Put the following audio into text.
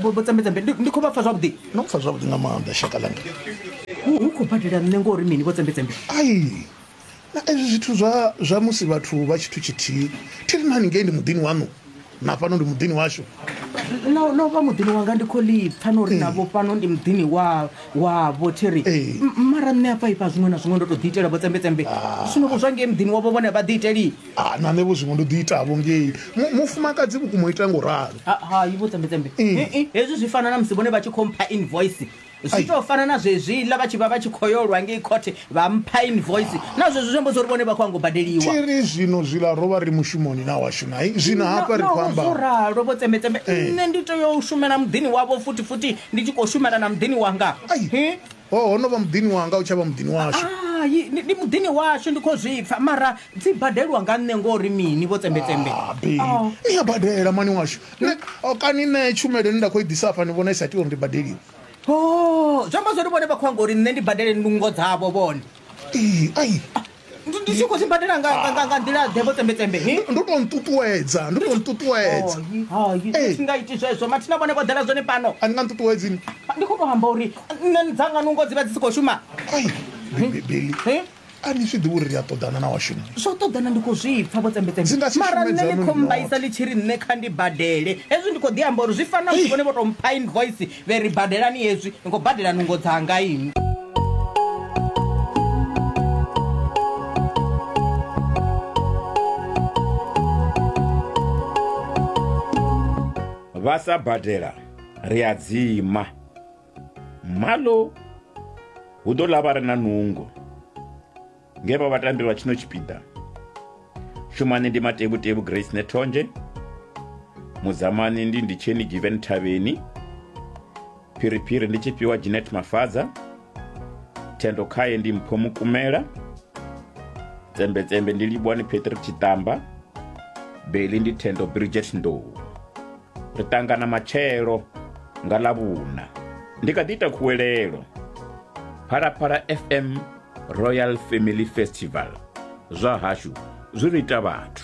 vhotsembedzembe ndi khou vha pfa zwavhuḓi no pfa zwavhuḓi nga maanḓa shaka langa hu khou badela nṋe ngo uri mini vhotsembedzembe ai na ezwi zwithu zwa zwa musi vhathu vha tshithu tshithihi thi ri na haningei ndi muḓini waṋu na fhano ndi muḓini washu no vha muḓini wanga ndi khou lipfa no uri navho fhano ndi muḓini wavho thi ri mara nṋe afha ifha zwiṅwe na zwiṅwe ndo to ḓi itela vhotsembedzembe zwino vho zwa ngei muḓini wavho vhone vha ḓi iteli Ha, na nṋe vho zwiṅwe ndo ḓi itavho ngei Mu- mufumakadzi vhukuma o ita ngo ralo Ha- hai vho tsembetembe Eh. Eh, eh, hezwi zwi fana na musi vhone vha tshi khou mpha invoice Ai. zwi tou fana na zwezwiḽa vha tshi vha vha tshi khou yolwa ngei khothe vha mpha invoice na zwezwi zwi amba zwa uri vhone vha khou ango badeliwa thiri zwino zwiḽa ro vha ri mushumoni na washu nai zwino hafha ri khou amba zwo ralo vho tsembetembe Eh. nṋe ndi tea u shumela muḓini wavho futhi futhi ndi tshi khou shumela na muḓini wanga Ai. Eh, Ho, ho no vha muḓini wanga, u tsha vha muḓini washu. Hai, ndi, ndi muḓini washu, ndi khou zwi pfa, mara dzi badelwa nga nṋe ngo ri mini, vho Tsembetsembe? Ah, Bi, ni a badela, mani washu. Nṋe, oh, kani nṋe tshumelo ine nda khou i ḓisa hafha ni vhona i sa tea uri ndi badeliwe? Ho, zwi amba zwo ri vhone vha khou anga uri nṋe ndi badele nungo dzavho vhone. ee ai ndi tshi khou zwi badela nga nga- nga- nga nḓila ḓe vho tsembetembe he? ndo tou nṱuṱuwedza ndo tou nṱuṱuwedza Hai, hai, Ee. thi nga iti zwezwo mathina vhone vho ḓela zwone pano a ni nga nṱuṱuwedzini ndi khou tou amba uri nṋe ni dzanga nungo dzi vha dzi si khou shuma ai bibeli he? a ni zwi ḓivhi uri ri a ṱoḓana na washumi zwo ṱoḓana ndi khou zwi pfa vho Dzi nga si tsembetembe mara shume nṋe dzaṋu ni khou ni mbaisa noṱhe. ḽi tshi ri nṋe kha ndi badele hezwi ndi khou ḓi amba uri zwi fana Ei. vhone vho tou mpha invoice Vhe ri badelani hezwi, ni khou badela nungo dzanga inwi. Vha sa badela ri a dzima. Malo hu ḓo ḽa vha re na nungo. nge vha vhatambi vha tshino tshipiḓa shumani ndi matevhutevhu grace nethonzhe mudzamani ndi nditsheni given thavheni phiriphiri ndi tshifhiwa ginet mafadza thendo khaye ndi mpho mukumela tsembetsembe ndi livhuwani patrick tshiṱamba beli ndi thendo bridget ndou ri ṱangana matshelo nga ḽavhuna ndi kha ḓi ita khuwelelo phalaphala fm Royal Family Festival, zwa hashu zwi ri ita vhathu.